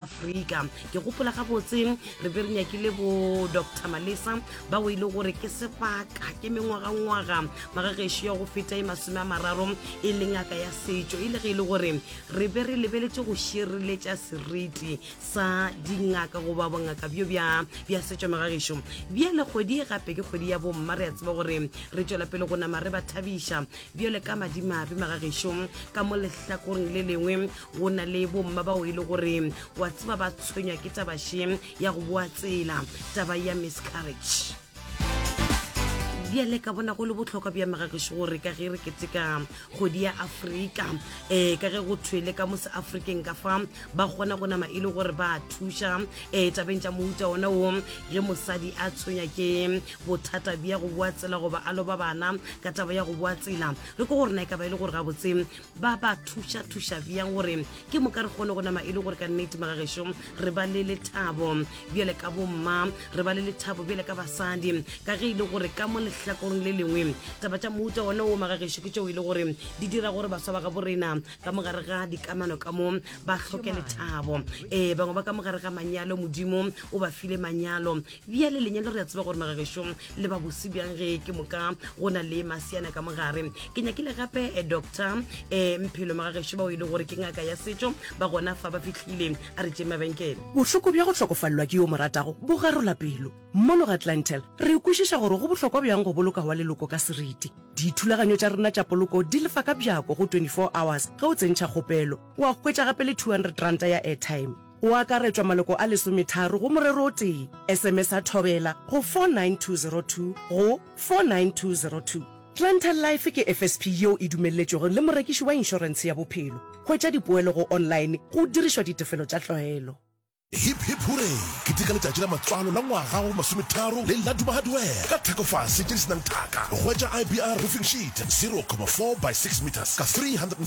afrika ke gopola gabotse re be re nyakile bo dr malesa ba o ile e gore ke sebaka ke mengwagangwaga magagešo ya go feta e masome a mararo e le ngaka ya setšo e le ge e le gore re be re lebeletše go šireletša seriti sa dingaka goba bongaka bjo bja setšo magagešo bja le kgwedi e gape ke kgwedi ya bomma re a tseba gore re tšwela pele go nama re ba thabiša bjale ka madimabe magagešo ka mo lehlakoreng le lengwe go na le bomma bao e le gore wa tseba ba tshwenywa ke tabaše ya go boa tsela taba ya miscarriage bjale ka bona go le botlhokwa bja megageše gore ka ge re keteka kgodi ya afrika um eh, ka ge go thwele ka mo seafrikeng ka fa ba kgona go nama e le gore ba thuša um tabeng tša mouta ona o ge mosadi a tshwenya ke bothata bja go boa tsela goba a loba bana ka taba ya go boa tsela re ko gore na e ka ba e le gore gabotse ba ba thuša-thuša bjang gore ke moka re kgone go nama e le gore ka nnete magagešo re ba le lethabo bjale ka bomma re ba le lethabo bjale ka basadi ka ge e le gore ka mo lehlakoreng le lengwe taba tša mouta one o magagešo ke tšeo e le gore di dira gore baswa ba ga borena ka mogare ga dikamano ka mo ba tlhoke lethabo ee bangwe ba ka mogare ga manyalo modimo o ba file manyalo Bjale lenyalo re a tseba gore magagešong le ba bose bjang ge ke moka go na le masiana ka mogare. Ke nyakile gape eh, doctor um mphelo magagešo bao e le gore ke ngaka ya setšo ba gona fa ba fitlhile a re tšeng mabenkele. Bohloko bja go hlokofalelwa ke yo mo ratago bo garola pelo. Mono ga Glentel re kwešiša gore go bohlokwa bjang go boloka wa leloko ka seriti. Dithulaganyo tša rena tša poloko di lefa ka bjako go 24 hours ge o tsentšha kgopelo. O a hwetša gape le 200 ranta ya airtime. O akaretšwa maloko a lesometharo go morero o tee. Esemesa Thobela go 49202 go 49202. Planter Life ke FSP yeo e dumelletšwego le morekiši wa inšorentshe ya bophelo. Hwetša dipoelo go online go dirišwa ditefelo tša tlwaelo. Hip Hip Hooray! Keteka letšatši la matswalo la ngwaga wa masometharo le la Duma Hardware ka thekofase tše di se nang thaka. Hwetša IBR Roofing Sheet 0,4 by 6 metres ka 360.